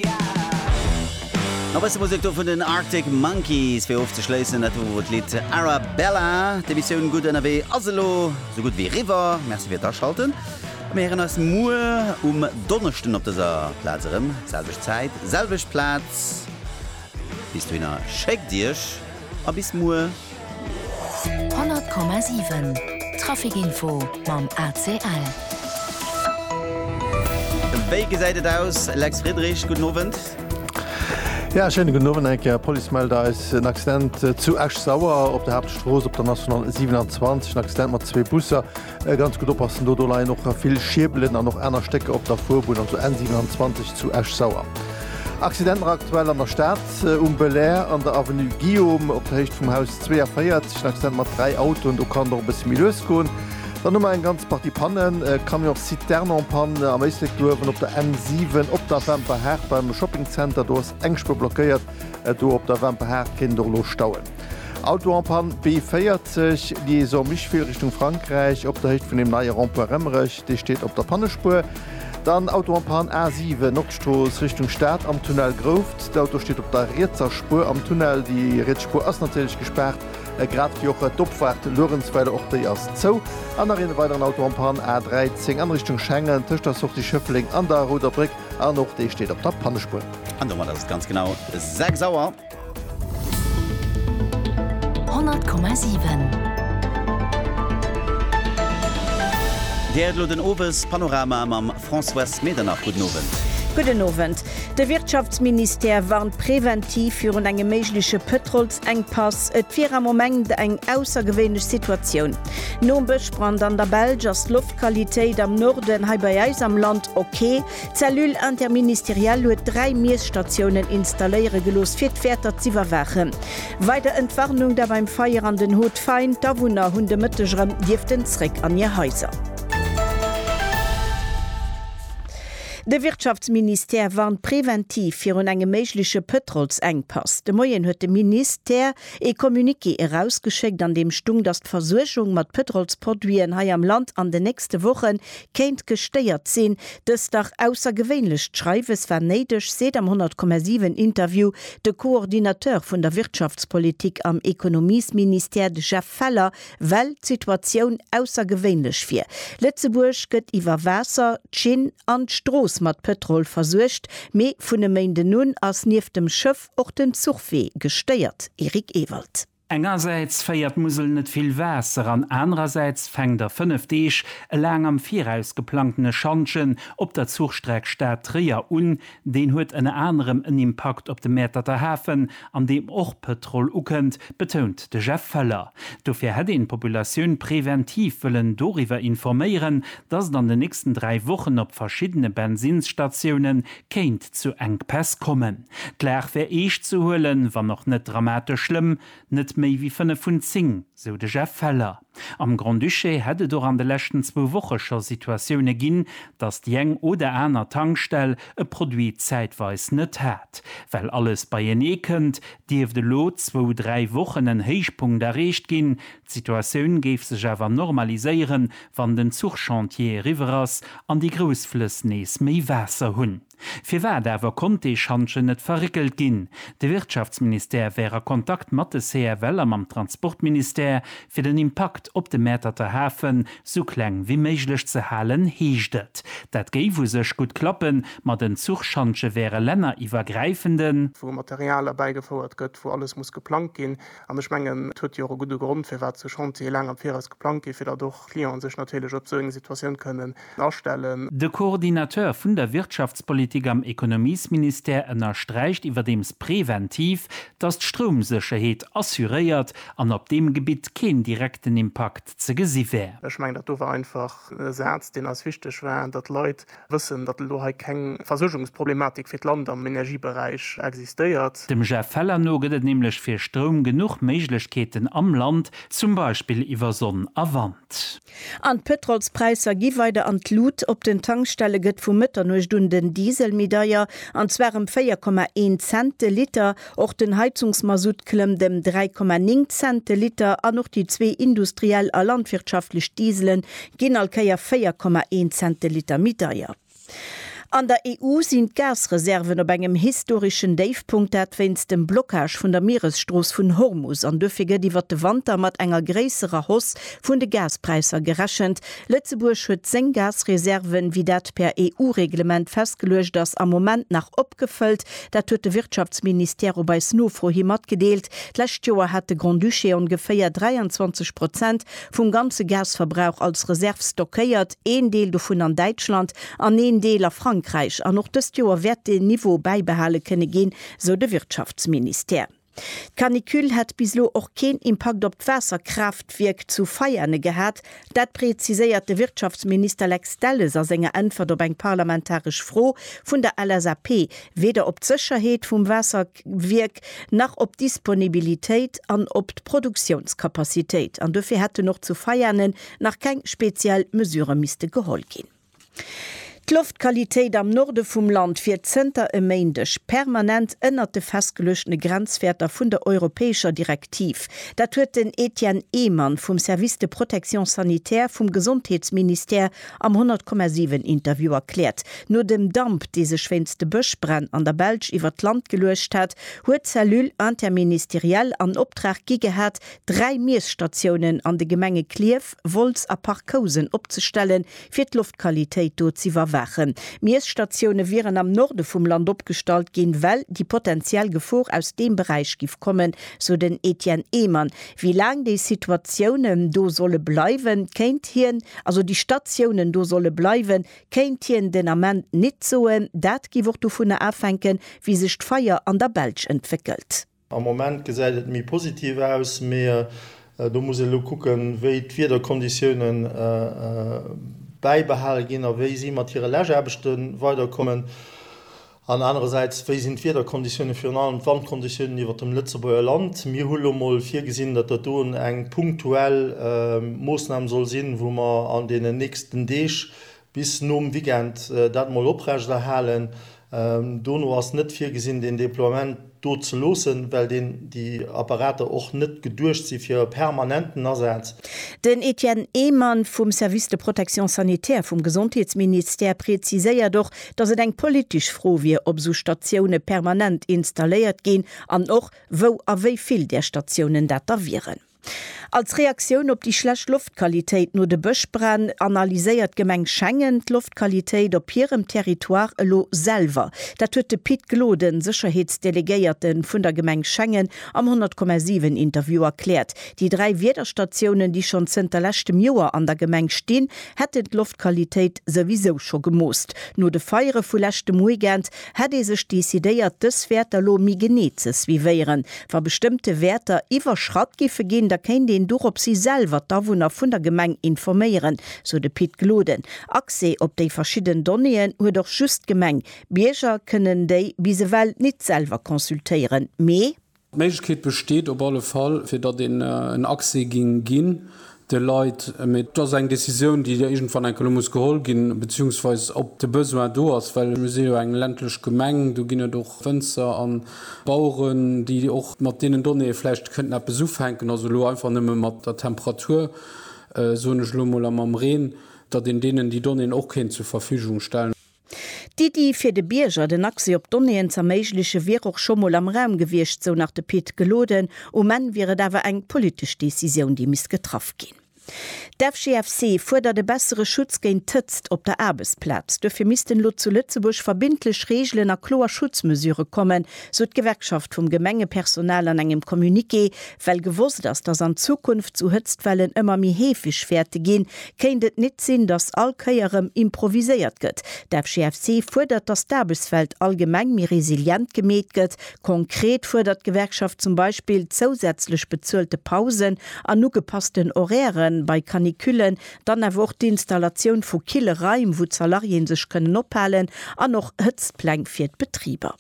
A bësse Musek do vun den Arctic Monkeys fir ofzeschléissen. Dat wor d'Lidd Arabella. D'Emissioun Gutt ënnerwee ass elo sou gutt wéi eriwwer. Merci fir d'Aschalten. Mir héieren eis muer um Donneschden op dëser Plaz erëm. Selwecht Zäit, selwecht Plaz. Bis dohinner schéckt Iech a bis muer. 100,7 Trafic Info mam ACL. Wéi gesäit et aus, Lex Friedrich? Gudden Owend. Jo, schéine gudden Owend eng Kéier. D'Police mellt eis en Accident zu Esch-Sauer op der Haaptstrooss op der National 27. En Accident mat zwee Busser. Ganz gutt oppassen, do do leien och vill Schierbelen an och aner Stécker op der Fuerbunn an zur N 27 zu Esch-Sauer. Accidenter aktuell an der Stad, um Belair an der Avenue Guillaume op der Héicht vum Haus 42 en Accident mat 3 Autoen, do kann et och e bësse méi lues goen. Dann hu mer eng ganz Partie Pannen, Camion Citerne en panne am Éislekduerf an op der N 7 op der Wemperhaart beim Shopping Center, do ass eng Spuer blockéiert, do op der Wemperhaart kéint et och elo stauen. Auto en panne, B40, Liaison Micheville Richtung Frankräich, op der Héicht vun dem neie Rond-point Remmerech, dee steet op der Pannespuer. Dann Auto en panne, A7, Nordstrooss Richtung Stad, am Tunnel Grouft. D'Auto steet op der rietser Spuer am Tunnel. Déi riets Spuer ass natierlech gespaart, grad wéi och d'Opfahrt Luerenzweiler, och déi ass zou. An nach een weideren Auto en panne, A13, an Richtung Schengen, tëscht der Sortie Schëffleng an der Roder Bréck, an och dee steet op der Pannespuer. An domat ass et ganz genau 6 Auer. Honnert Komma siwen. Dir héiert elo den Owes Panorama mam Françoise Medernach. Gudden Owend. Gudden Owend. De Wirtschaftsministère warnt präventiv virun engem méigleche Pëtrolsengpass. Et wier am Moment eng aussergewéinlech Situatioun. Nom Bëschbrand an der Belsch ass d'Loftqualitéit am Norden hei bei eis am Land ok. D'Cellule interministérielle huet dräi Miesstatiounen installéiere gelooss, fir d'Wäerter z'iwwerwaachen. Weider Entwarnung da beim Feier an den Haut Fain, d'Awunner hunn de Mëtteg erëm dierften zréck an hir Haiser. De Wirtschaftsministère warnt preventiv virun engem méigleche Pëtrolsengpass. De Moien huet de Minis tère ee Communiqué erausgeschéckt, an deem stung, datt d'Versuergung mat Pëtrolsproduiten hei am Land an den nächste Woche kéint gestéiert sinn. Dëst dach aussergewéinlecht Schreiwes war néideg, seet am 100,7 Interview de Coordinateur vun der Wirtschaftspolitik am Ekonomiesministère, de Jeff Feller, well d'Situatioun aussergewéinlech wier. Lëtzebuerg gëtt iwwer Waasser, d'Schinn an d'Strooss mat Pëtrol versuergt, mee vun e Méinden un ass nieft dem Schëff och den Zuchwee gestéiert. Eric Ewald. Engersäits féiert d'Musel net vill Waasser an anerersäits fänkt a fënnef Deeg e laang am Viraus geplangtene Schantjen op der Zuchstreck Stad-Tréier un. Deen huet ënner anerem en Impakt op de Mäerterter Hafen, an deem och Pëtrol ukënnt, betount de Jeff Feller. Dofir hätt een d'Populatioun preventiv wëllen doriwwer informéieren, datt et an den nächsten dräi Wochen op verschiddene Bensinnsstatioune kéint zu Enkpäss kommen. D'Lag wär eescht ze huelen, wann och net dramatesch schlëmm, net méi wéi 5 vun 10, sou de Jeff Feller. Am Grand-Duché hätt et och an de leschten zwou Woche scho Situatioune ginn, datt déi eng oder aner Tankstell e Produit zäitweis net hat. Well alles beienee kënnt, dierft elo zwou, dräi Wochen en Héichpunkt erreecht ginn. D'Situatioun géif sech awer normaliséieren, wann den Zuchchantier eriwwer ass an déi grouss Flëss nees méi Waasser hunn. Firwat awer konnt dee Schantjen net verréckelt ginn? De Wirtschaftsministère wär a Kontakt mat de CFL a mam Transportministère, fir den Impakt op de Mäerterter Hafe sou kleng wéi méiglech ze halen, heescht et. Dat géif u sech gutt klappen, ma den Zuchschantje wär e länneriwwergräifenden. wou Material erbäigefouert gëtt, wou alles muss geplangt ginn. An ech mengen, et huet jo och e gudde Grond, firwat sou Chantiere laang am Viraus geplangt ginn, fir datt och d'Clienten sech natierlech op sou eng Situatioun kënnen astellen. De Coordinateur vun der Wirtschaftspolitik am Ekonomiesministère ënnersträicht iwwerdeems präventiv, datt d'Stroumsécherheet assuréiert an op deem Gebitt keen direkten Impakt ze gesi wär. Ech mengen, datt do war einfach e Saz, deen eis wichteg war, datt d'Leit wëssen, datt elo hei keng Versuergungsproblematik fir d'Land am Energieberäich existéiert. Dem Jeff Feller no gëtt et nämlech fir Stroum genuch Méiglechkeeten am Land, zum Beispill iwwer Sonn a Wand. An d'Pëtrolspräisser gi weider an d'Lut, Op den Tankstelle gëtt vu Mëtternuecht un den Diesel méi deier, an zwar ëm 4,1 Cent de Liter. Och den Heizungsmasutt klëmmt ëm 3,9 Cent de Liter an och déi zwee industriell a landwirtschaftlech Dieselen ginn all Kéier 4,1 Cent de Liter méi deier. An der EU sinn d'Gasreserven op engem historeschen Déifpunkt, dat wéinst dem Blockage vun der Mieresstrooss vun Hormus. An duerfir gëtt iwwert de Wanter mat enger gréisserer Hausse vun de Gaspräisser gerechent. Lëtzebuerg huet seng Gasreserven, wéi dat per EU-Reglement festgeluecht ass, am Moment nach opgefëllt. Dat huet de Wirtschaftsministère op eis Nofro hi matgedeelt. D'lescht Joer hat de Grand-Duché ongeféier 23 Prozent vum ganze Gasverbrauch als Reserv stockéiert, een Deel dovun an Däitschland an een Deel a Frankräich. An och dëst Joer wäert deen Niveau bäibehale kënne ginn, sou de Wirtschaftsministère. D'Canicule hätt bis elo och keen Impakt op d'Waasserkraaftwierk zu Veiane gehat. Dat preziséiert de Wirtschaftsminister Lex Delles a senger Äntwert op eng parlamentaresch Fro vun der LSAP. Weder op d'Sécherheet vum Waasser. Wierk nach op d'Disponibilitéit an op d'Produktiounskapazitéit, an dofir hätten och zu Veianen nach keng speziell Mesurë misste geholl ginn. D'Loftqualitéit am Norde vum Land wier zënter e Méindeg permanent ënnert de festgeluechtene Grenzwäerter vun der europäescher Direktiv. Dat huet den Etienne Ehmann vum Service de protection sanitaire vum Gesondheetsministère Am 100,7 Interview erkläert, no dem Damp, dee sech wéinst de Bëschbränn an der Belsch iwwert d'Land geluecht hat, huet d'Cellule interministérielle an Optrag gi gehat, dräi Miesstatiounen an de Gemenge Klierf, Wolz a Parc-Housen opzestellen, fir d'Loftqualitéit do z'iwwerwaachen. D'Miesstatioune wieren am Norde vum Land opgestallt ginn, well déi potentiell Gefor aus deem Beräich giff kommen, sou den Etienne Ehmann. Wéi laang déi Situatiounen do solle bleiwen, kéint hien, also déi Statiounen do solle bleiwen, kéint hien den Ament nit soen. Dat giff och dovunner afänken, wéi sech d'Feier an der Belsch entwéckelt. Am Moment gesäit et méi positiv aus, mee do muss een elo kucken, wéi d'Wiederkonditiounen bäibehale ginn a wéi si mat hire Läschaarbechte weiderkommen. An anerersäits, wéi sinn d'Wiederkonditiounen, virun allem d'Wandkonditiounen iwwert dem Lëtzebuerger Land? Mir hu lo mol virgesinn, datt dat do eng punktuell Moossnam soll sinn, wou mer an deenen nächsten Deeg bis nom Weekend dat mol oprechterhalen. Dono ass net virgesinn, deen Déploiement. do ze loossen, well deen, déi Apparater och net geduecht si fir e permanenten Asaz. Den Etienne Ehmann vum Service de protection sanitaire vum Gesondheetsministère preziséiert och, datt et eng politesch Fro wier, ob esou Statioune permanent installéiert ginn an och wou a wéi vill där Statiounen dat da wieren. Als Reaktioun op déi schlecht Loftqualitéit no de Bëschbränn analyséiert d'Gemeng Schengen d'Loftqualitéit op hirem Territoire elo selwer. Dat huet de Pit Gloden, Sécherheetsdelegéierte vun der Gemeng Schengen, am 100,7 Interview erkläert. Déi dräi Wiederstatiounen, déi schonn zënter leschtem Joer an der Gemeng stinn, hätten d'Loftqualitéit souwisou scho gemoosst. No de Feiere vu leschtem Weekend Hätt ee sech decidéiert, dës Wäerter elo méi genee ze suivéieren? Wa bestëmmte Wäerter iwwerschratt giffe ginn, da kéint een doropshi selwer d'Awunner vun der Gemeng informéieren, sou de Pit Gloden. Accès op déi verschidden Donnéeën huet och just d'Gemeng. Bierger kënnen déi bis ewell nit selwer consultéieren, mee. D'Méiglechkeet besteet op alle Fall, fir datt een en Accès géing ginn de Leit. Mee et ass eng Décisioun, déi iergendwann enke lo muss geholl ginn, beziehungsweise ob de Besoin do ass, well mir si jo eng ländlech Gemeng. Do ginn et och Wënzer a Baueren, déi och mat deenen Donnéeë vläicht kënnten eppes ufänken. Also elo einfach nëmme mat der Temperatur, soen ech elo emol, a mam Reen, datt een deenen déi Donnéeën och kéint zur Verfügung stellen. D'Iddi, fir de Bierger den Accès op Donnéeën z'erméiglechen, wier och scho mol am Raum gewiescht, sou nach de Pit Geloden. Um Enn wier et awer eng politesch Decisioun, déi misst getraff ginn. D'FGFC fuerdert e bessere Schutz géint d'Hëtzt op der Aarbechtsplaz. Duerfir missten elo zu Lëtzebuerg verbindlech Reegelen a kloer Schutzmesure kommen, sou d'Gewerkschaft vum Gemengepersonal an engem Communiqué, Well gewosst ass, dass an Zukunft sou Hëtztwellen ëmmer méi heefeg wäerte ginn, kéint et nit sinn, dass all Kéier rëm improviséiert gëtt. D'FGFC fuerdert, dass d'Aarbechtswelt allgemeng méi resilient gemeet gëtt. Konkret fuerdert d'Gewerkschaft zum Beispill zousätzlech bezuelte Pausen an ugepassten Horairë bei Canicullen, dann awer och d'Installatioun vu kille Raim, wou d'Salariéen sech kënnen ophalen, an och Hëtztpläng fir d'Betriber.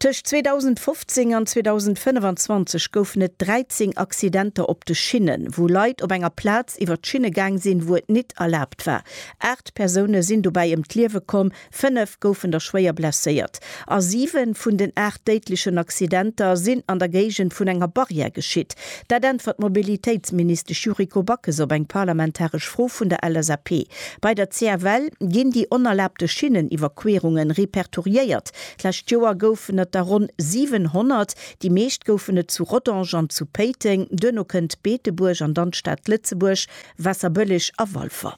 Tëscht 2015 an 2025 goufen et 13 Accidenter op de Schinnen, wou Leit op enger Plaz iwwer d'Schinne gaang sinn, wou et nit erlaabt war. Aacht Persoune sinn dobäi ëm d'Liewe komm, fënnef goufen der schwéier blesséiert a siwe vun den aacht déidlechen Accidenter sinn an der Géigend vun enger Barrière geschitt. Dat äntwert d'Mobilitéitsministesch Yuriko Backes op eng parlamentaresch Fro vun der LSAP. Bei der CFL ginn déi onerlaabte Schinneniwwerquerungen repertoriéiert. D'lescht Joer goufen et der ronn 700, déi meescht goufen et zu Rodange an zu Péiteng, duerno kënnt Beetebuerg an dann d'Stad Lëtzebuerg, Waasserbëlleg a Walfer.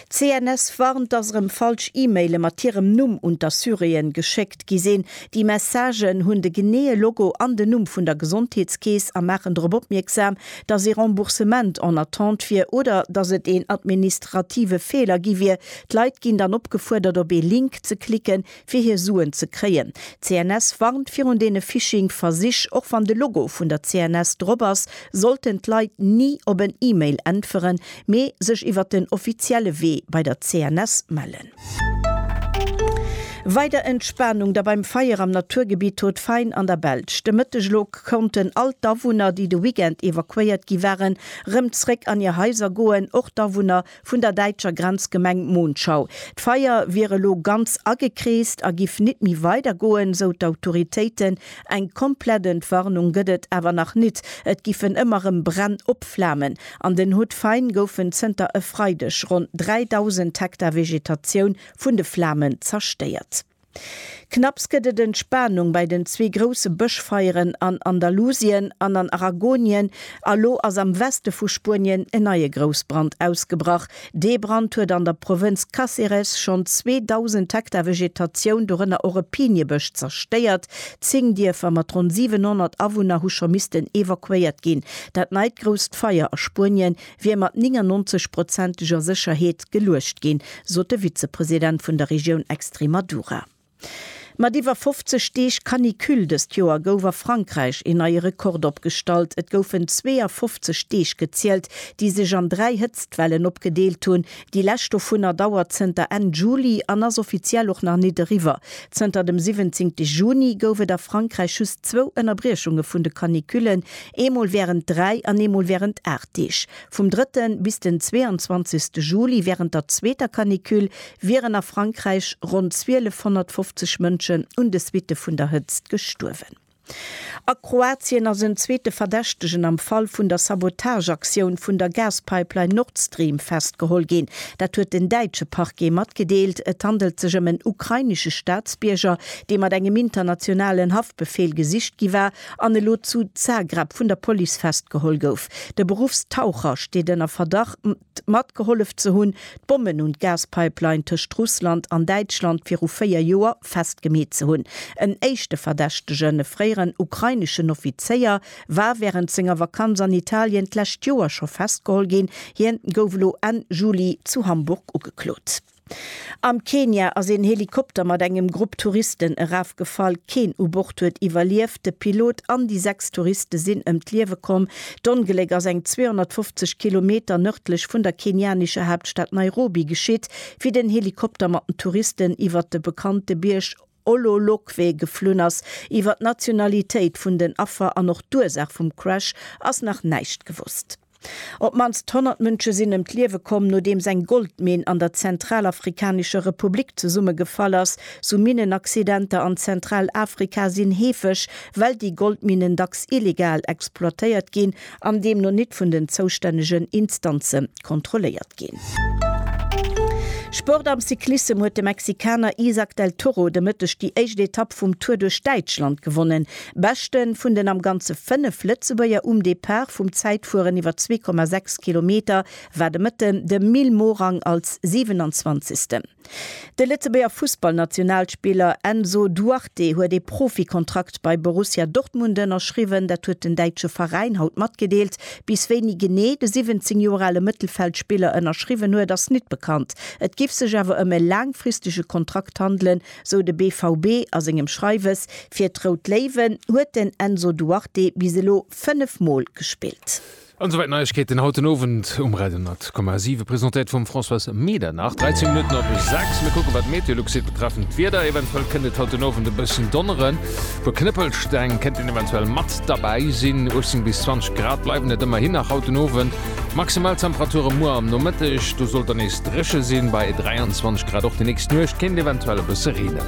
D'CNS warnt, dass erëm falsch E-Maile mat hirem Numm un d'Assuréen geschéckt gi sinn. Déi Messagen hunn de geneeë Logo an den Numm vun der Gesondheetskeess a maachen drop opmierksam, dass ee Remboursement en attente wier oder dass et een administrative Feeler gi wier. D'Leit ginn dann opgefuerdert op ee Link ze klicken, fir hir Suen ze kréien. D'CNS warnt virun deene Phishing-Versich. Och wann de Logo vun der CNS drop ass, sollten d'Leit ni op en E-Mail äntweren, mee sech iwwer den offizielle Wee bei der CNS mellen. Weider Entspanung da beim Feier am Naturgebitt Haut Fain an der Belsch. De Mëtteg elo konnten all d'Awunner, déi de Weekend evakuéiert gi waren, rëm zréck an hir Haiser goen, och d'Awunner vun der däitscher Grenzgemeng Monschau. D'Feier wier elo ganz agekreest a giff nit méi weider goen, sou d'Autoritéiten. Eng komplett Entwarnung gëtt et awer nach nit, et giffen ëmmer rëm Bränn opflamen. An den Hautes-Fagnes goufen zënter e Freideg ronn 3.000 Hektar Vegetatioun vun de Flamen zerstéiert. Knapps gëtt et Entspanung bei den zwee grousse Bëschfeieren an Andalusien an an Aragonien a lo ass am Weste vu Spuenien en neie Groussbrand ausgebrach, Dee Brand huet an der Provënz Cáceres schonn 2.000 Hektar Vegetatioun, dorënner och e Piniebësch, zerstéiert. Zéng Dierfer mat ronn 700 Awunner hu scho missten evakuéiert ginn. Dat neit grousst Feier a Spuenien wier mat 99 prozenteger Sécherheet geluecht ginn, sot de Vizepresident vun der Regioun Extremadura. Mat iwwer 50 Deeg Canicule dëst Joer gouf a Frankräich een neie Rekord opgestallt. Et goufen 52 Deeg gezielt, déi sech an dräi Hëtztwellen opgedeelt hunn. Déi lescht dovunner dauert zënter Enn Juli an ass offiziell och nach nit eriwwer. Zënter dem 17 Juni gouf et a Frankräich just zwou Ënnerbriechunge vun de Canicullen, eemol wärend dräi an eemol wärend aacht Deeg. Vum drëtte bis den 22 Juli wärend der zweeter Canicule wieren a Frankräich ronn 1250 Mënschen un de Suitte vun der Hëtzt gestuerwen. A Kroatien ass en zweete Verdächtegen am Fall vun der Sabotageaktioun vun der Gaspipeline Nord Stream festgeholl ginn. Dat huet den däitsche Parquet matgedeelt. Et handelt sech ëm en ukrainesche Staatsbierger, dee mat engem internationalen Haftbefeel gesicht gi war an elo zu Zagreb vun der Police festgeholl gouf. De Beruffstaucher steet ënner Verdacht, t matgehollef ze hunn, d'Bommen un d'Gaspipeline tëscht Russland an Däitschland viru véier Joer festgemeet ze hunn. En éischte Verdächtegen, e fréieren ukraineschen Offizéier, war wärend senger Vakanz an Italien d'lescht Joer scho festgeholl ginn. Hien gouf elo Enn Juli zu Hamburg ugeklot. Am Kenia ass een Helikopter mat engem Grupp Touristen erafgefall. Keen u Bord huet iwwerlieft. De Pilot an déi sechs Touriste sinn ëm d'Liewe komm. D'Ongléck ass eng 250 Kilometer nërdlech vun der kenianescher Haaptstad Nairobi geschitt, wéi den Helikopter mat den Touristen iwwert de bekannte Bierg Ololokwe geflunn ass. Iwwer d'Nationalitéit vun den Affer an och d'Ursaach vum Crash ass nach näischt gewosst. Op d'mannst 100 Mënsche sinn ëm d'Liewe komm, nodeems eng Goldminn an der Zentralafrikanescher Republik zesummegefall ass. Sou Minnenaccidenter an Zentralafrika sinn heefeg, well déi Goldminnen dacks illegal exploitéiert ginn an deemno nit vun den zoustännegen Instanze kontrolléiert ginn. Sport Am Cyclissem huet de Mexikaner Isaac del Toro de Mëtteg déi éischt Etapp vum Tour duerch Däitschland gewonnen. Beschte vun den am Ganze 5 Lëtzebuerger um Depart vum Zäitfueren iwwer 2,6 Kilometer war de Mëtten de Mil Morang als 27. De Lëtzebuerger Fussballnationalspiller Enzo Duarte huet ee Profikontrakt bei Borussia Dortmund ënnerschriwwen. Dat huet den däitsche Veräin haut matgedeelt. Bis wéini genee de 17 Joer ale Mëttelfeldspiller ënnerschriwwen huet, ass nit bekannt. Et giff sech awer ëm e laangfristege Kontrakt handelen, sou de BVB a sengem Schreiwes. Fir d'Rout Léiwen huet den Enzo Duarte bis elo 5 Mol gespillt. An souwäit d'Neiegkeeten haut den Owend um Radio 10,7, presentéiert vum Françoise Medernach. 13 Minutten op 6, mir kucken, wat d'Meteolux seet betreffend d'Wieder. Eventuell kënnt et haut den Owend e bëssen donneren, puer Knëppelsteng kënnten eventuell mat derbäi sinn. 18 bis 20 Grad bleiwen et ëmmerhin nach haut den Owend, d'Maximaltemperature muer am Nomëtteg, do sollt dann nees dréche sinn, bei 23 Grad. Och déi nächst Nuecht kéint eventuell e bësse reenen.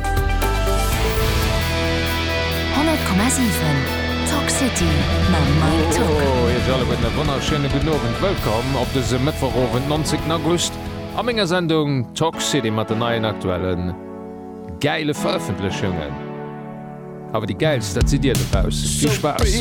100,7. Talk City mam Mike Tock. Hallo iech alleguerten e wonnerschéine gudden Owend. Wëllkomm op dëse Mëttwochowend, 19 August a menger Sendung Talk City mat den neien aktuellen gäile Verëffentlechungen. Awer déi gäilst, dat sidd dir dobausst. Vill Spaass!